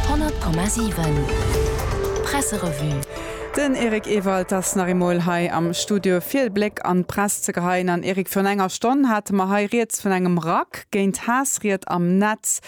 100,7 Presserevue. Den Eric Ewald ass nach eemol hei am Studio fir e Bléck an d'Press ze geheien. An Eric, virun enger Stonn hate mer hei rieds vun engem Rack géint Haassried am Netz,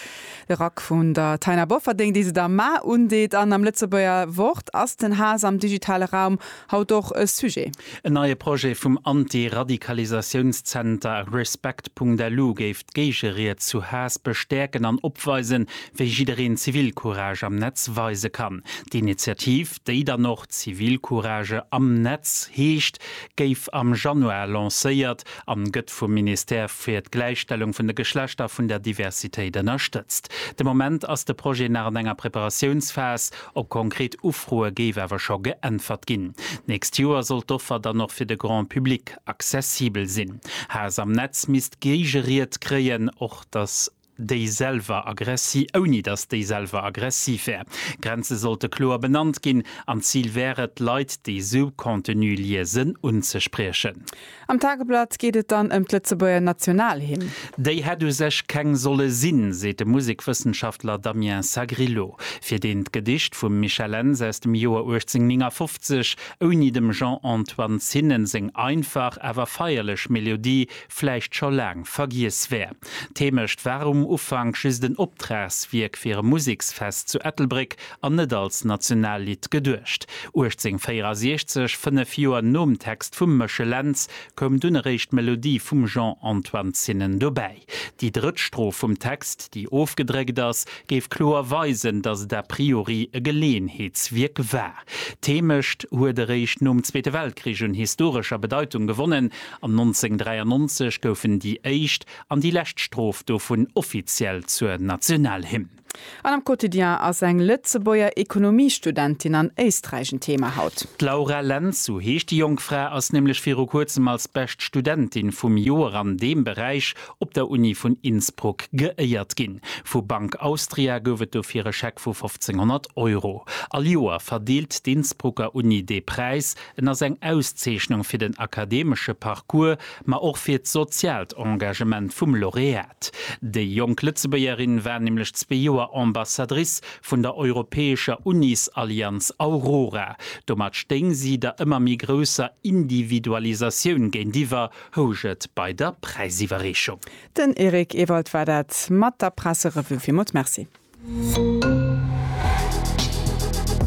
de Rack vun der Taina Bofferding, déi se der Mar undeet. An am Lëtzebuerger Wort ass den Haass am digitale Raum haut och e Sujet. En neie Projet vum Anti-Radikalisatiounszenter Respect.lu géif D'Géigeried zu Haass bestäerken an opweisen, wéi jiddereen Zivilcourage am Netz weise kann. D'Initiativ, déi dann och Zivilcourage am Netz heescht, géif am Januar lancéiert an gëtt vum Ministère fir d'Gläichstellung vun de Geschlechter vun der Diversitéit ënnerstëtzt. De Moment ass de Projet nach an enger Preparatiounsphas, op konkret Ufroe géif awer scho geäntwert ginn. D'nächst Joer soll d'Offer dann och fir de Grand Public Accessibel sinn. Haass am Netz misst Géigeried kréien, och datt déi selwer aggressi ouni datt déi selwer aggressiv wär. Grenze sollte kloer benannt ginn, an d'Zil wär et, Leit, déi esou Contenu liesen, unzespriechen. Am Tageblatt geet et dann ëm d'Lëtzebuerger Nationalhymn. Déi hätt u sech keng solle sinn, seet de Musekwëssenschaftler Damien Sagrillo, fir deen d'Gedicht vum Michel Enns aus dem Joer 1859 ouni dem Jean-Antoine Zinnen seng einfach awer feierlech Melodie vläicht scho laang vergiess wär. D'Heemecht war um Ufank just en Optragswierk fir e Museksfest zu Ettelbréck an net als Nationallidd geduecht. 1864, fënnef Joer nom Text vum Méchel Lentz, koum dunn eréischt d'Melodie vum Jean-Antoine Zinnen dobäi. Déi drëtt Strof vum Text, déi ofgedréckt ass, géif kloer weisen, datt et a priori e Geleeënheetswierk war. D'Heemecht huet eréischt nom Zweete Weltkrich un historescher Bedeitung gewonnen, an 1993 goufen déi éischt an déi lescht Strof dovun offiziell zur Nationalhymn. An am Quotidien ass eng Lëtzebuerger Ekonomiestudentin an Éisträich en Thema haut. D'Laura Lentz, sou heescht déi jonk Fra, ass nämlech viru kuerzem als bescht Studentin vum Joer an deem Beräich op der Uni vun Innsbruck geéiert ginn. Vu Bank Austria gouf et dofir e Scheck vu 1500 Euro. All Joer verdeelt d'Innsbrucker Uni dee Präis. En ass eng Auszeechnung fir den akademesche Parcours, ma och fir d'soziaalt Engagement vum Laureat. Déi jonk Lëtzebuergerin war nämlech zwee Joer Ambassadrice vun der europäescher Unisallianz Aurora. Domat stéing si der ëmmer méi grousser Individualisatioun géintiwwer, housch et bei der Präisiwwerreechung. Den Eric Ewald war dat mat der Presserevue. Villmools Merci.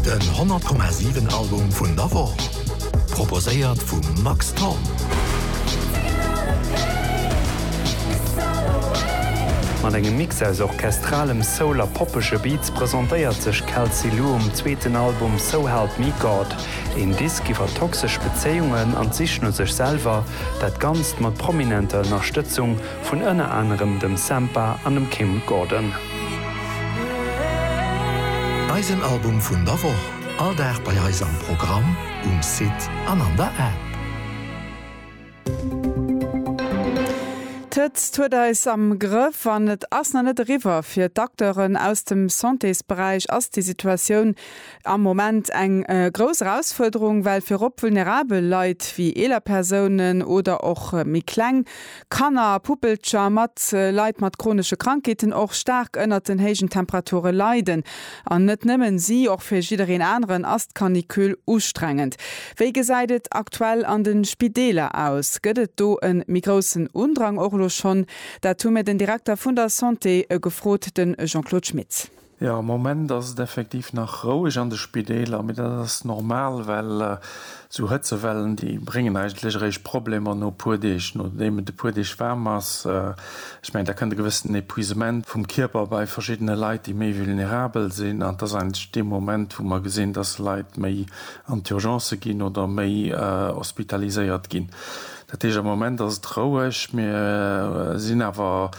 Den 100,7 Album vun der Woch, proposéiert vum Max Thorn. Mat engem Mix aus orchestralem Soul a poppege Beats presentéiert sech Kelsey Lu um zweeten Album So Help Me God. Een Disk iwwer toxesch Bezéiungen an d'Sich no sech selwer, dat Ganzt mat prominenter Ënnerstëtzung vun ënner anerem dem Sampha an dem Kim Gordon. Eisen Album vun der Woch, all Dag bei eis am Programm, um Site an an der App. D'Hëtzt huet eis am Grëff an et ass nach net eriwwer. Fir d'Acteuren aus dem Santésberäich ass déi Situatioun am Moment eng grouss Erausfuerderung, well virop vulnerabel Leit, wéi eeler Persounen oder och méi kleng Kanner a Puppelcher mat Leit mat chronesche Krankheeten och staark ënnert den héijen Temperature leiden. An net nëmmen si, och fir jiddereen aneren ass d'Canicule ustrengend. Wéi gesäit et aktuell an de Spideeler aus? Gëtt et do e méi groussen Undrang och elo schonn? Dat hu mir den Direkter vun der Santé gefrot, de Jean-Claude Schmitz. Jo, am Moment ass et effektiv nach roueg an de Spideeler, mee dat ass normal, well esou Hëtzewellen, déi bréngen eigentlech eréischt Problemer no e puer Deeg, nodeem et e puer Deeg waarm ass. Ech mengen, da kënnt e gewëssenen Epuisement vum Kierper bei verschiddene Leit, déi méi vulnerabel sinn. An et ass eigentlech dee Moment, wou mer gesinn, dass Leit méi an d'Urgencë ginn oder méi hospitaliséiert ginn. Dat heescht, am Moment ass et roueg. Mir sinn awer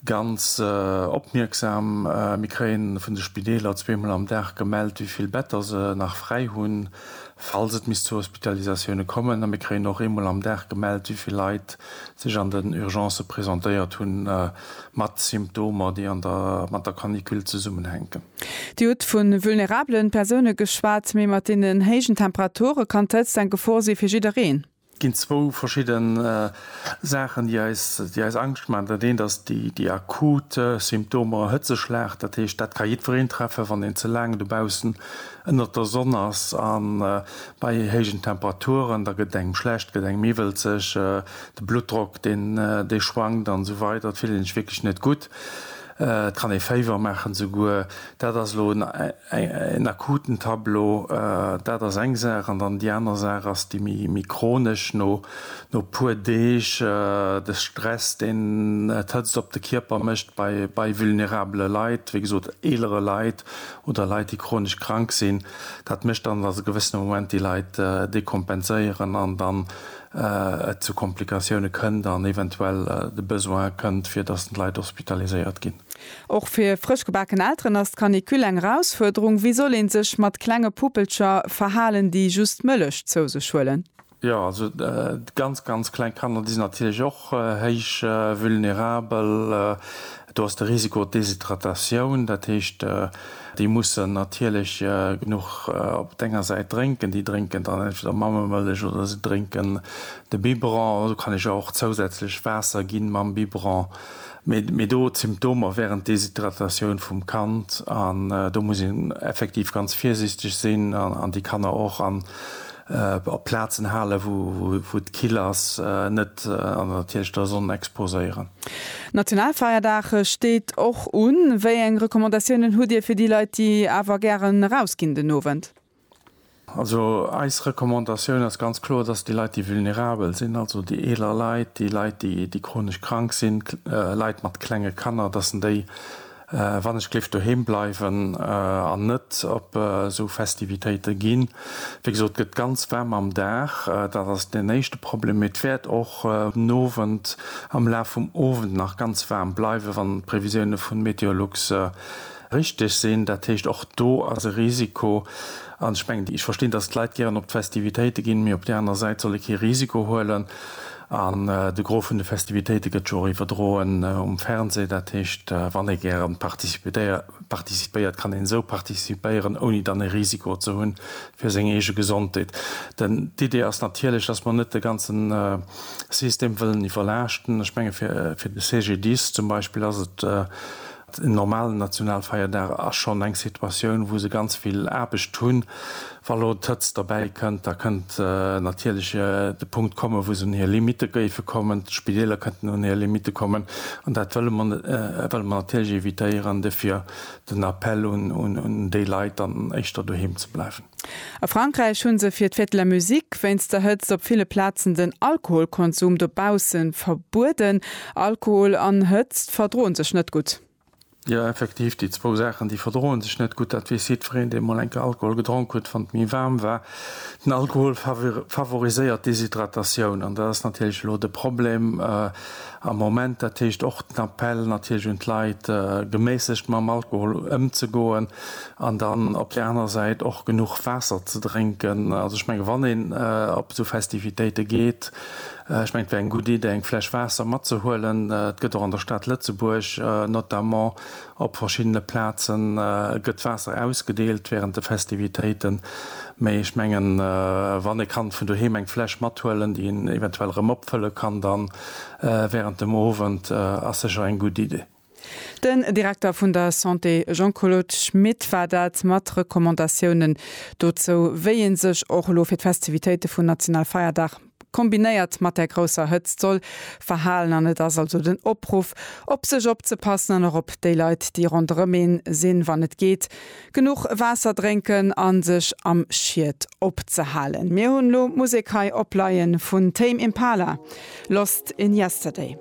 Ganz opmierksam. Mir kréien vun de Spideeler zweemol am Dag gemellt, wéi vill Better se nach fräi hunn, falls et misst zu Hospitalisatioune kommen. A mir kréien och eemol am Dag gemellt, wéi vill Leit sech an den Urgencë presentéiert hunn, mat Symptomer, déi mat der Canicule zesummenhänken. Dir hutt vu vulnerabele Persoune geschwat, mee mat deenen héijen Temperature kann d'Hëtzt eng Gefor si fir jiddereen. Et ginn zwou verschidde Saachen, déi eis Angscht maachen. Dat eent ass déi akut Symptomer, Hëtzeschlag. Dat heescht, dat ka jiddwereen treffen, wann een ze laang dobaussen ënnert der Sonn ass a bei héijen Temperaturen. Da gëtt et engem schlecht, gëtt engem iwwelzeg, de Bluttdrock dee schwankt an esou weider. Et fillt een sech wierklech net gutt. Et kann ee Féiwer maachen esouguer. Dat ass elo En akuten Tableau, dat ass eng Saach. An dann déi aner Saach ass déi méi chronesch, no e puer Deeg, de Stress, deen d'Hëtzt op de Kierper mécht bei vulnerabele Leit, wéi gesot eelere Leit oder Leit, déi chronesch krank sinn. Dat mécht dann, datt e gewëssene Moment déi Leit dekompenséieren an dann et zu Komplikatioune kënnt an eventuell de Besoin kënnt, fir datt d'Leit hospitaliséiert ginn. Och fir frësch gebaken Elteren ass d'Canicule eng Erausfuerderung. Wéi soll ee sech mat klenge Puppelcher verhalen, déi just Mëllech zou sech huelen? Jo, also ganz, ganz kleng Kanner, déi sinn natierlech och héich vulnerabel. Do ass de Risiko Deshydratatioun. Dat heescht, déi mussen natierlech genuch op denger Säit drénken. Déi drénken dann entweder Mammemëllech oder se drénken de Biberon. Do kann ech och zousätzlech Waasser ginn mam Biberon. Mee do d'Symptomer während Deshydratatioun vum Kand an do muss een effektiv ganz virsiichteg sinn an déi Kanner och an op Plazen halen, wou et kill ass, net an natierlech der Sonn exposéieren. Nationalfeierdag steet och un. Wéi eng Recommandatiounen hutt Dir fir déi Leit, déi awer gären erausginn den Owend? Also eis Recommandatioun ass ganz kloer, dass déi Leit, déi vulnerabel sinn, also déi eeler Leit, déi Leit, déi chronesch krank sinn, Leit mat klenge Kanner, dass en déi, wann ech géif doheem bleiwen an net op esou Festivitéite ginn. Wéi gesot, et gëtt ganz waarm am Dag, dat ass deen éischte Problem, mee et wäert och den Owend, am Laf vum Owend nach ganz waarm bleiwen, wann d'Previsioune vu Meteolux richteg sinn. Dat heescht, och do ass e Risiko. An ech mengen, ech verstinn, datt d'Leit gären op d'Festivitéite ginn, mee op där aner Säit soll ee kee Risiko huelen. An de Gros vun de Festivitéite gëtt jo och iwwerdroen um Fernseh. Dat heescht, wann ee gäre participéiert, kann een esou participéieren, ouni dann e Risiko ze hunn fir seng eege Gesondheet. Denn d'Idee ass natierlech, datt mer net de ganze System wëllen iwwerlaaschten. Ech menge fir de CGDIS zum Beispill ass et En normalen Nationalfeierdag ass schonn eng Situatioun, wou se ganz vill Aarbecht hunn. Wa lo d'Hëtzt derbäi kënnt, da kënnt natierlech de Punkt kommen, wou se un hir Limitte géife kommen. D'Spideeler kënnten un hir Limitte kommen. An dat wëlle mer net, wëlle mer natierlech evitéieren. Dofir den Appell un déi Leit, dann éischter doheem ze bleiwen. A Frankräich hu se fir d'Fête de la Musique wéinst der Hëtzt op ville Plazen den Alkoholkonsum dobausse verbueden. Alkohol an Hëtzt verdroen sech net gutt. Jo effektiv, déi zwou Saachen déi verdroen sech net gutt, dat weess jiddwereen deen mol enke Alkohol gedronk hutt, wann et méi waarm war. Den Alkohol favoriséiert d'Deshydratatioun an dat ass natierlech elo de Problem. Am Moment, dat heescht och den Appell natierlech un d'Leit, geméissegt mam Alkohol ëmzegoen an dann op där anerer Säit och genuch Waasser ze drénken. Also ech menge wann een op esou Festivitéite geet, ech menge et wär eng gutt Iddi eng Fläsch Waasser matzehuelen. Et gëtt och an der Stad Lëtzebuerg notamment Op verschiddene Plaze gëtt Waasser ausgedeelt wärend de Festivitéiten, mee ech mengen, wann ee kann vun doheem eng Fläsch mathuelen, déi een eventuell erëm opfëlle kann da wärend dem Owend, ass sécher eng gutt Iddi. Den Direkter vun der Santé Jean-Claude Schmit war dat, mat Recommandatiounen dozou, wéi ee sech och elo fir d'Festivitéite vun Nationalfeierdag kombinéiert mat där grousser Hëtzt soll verhalen. An et ass also den Opruff, op sech opzepassen an och op déi Leit, déi ronderëm ee sinn, wann et geet genuch Waasser drénken a sech am Schiet opzehalen. Mir hunn elo Musek hei opleie vun Tame Impala, Lost in Yesterday.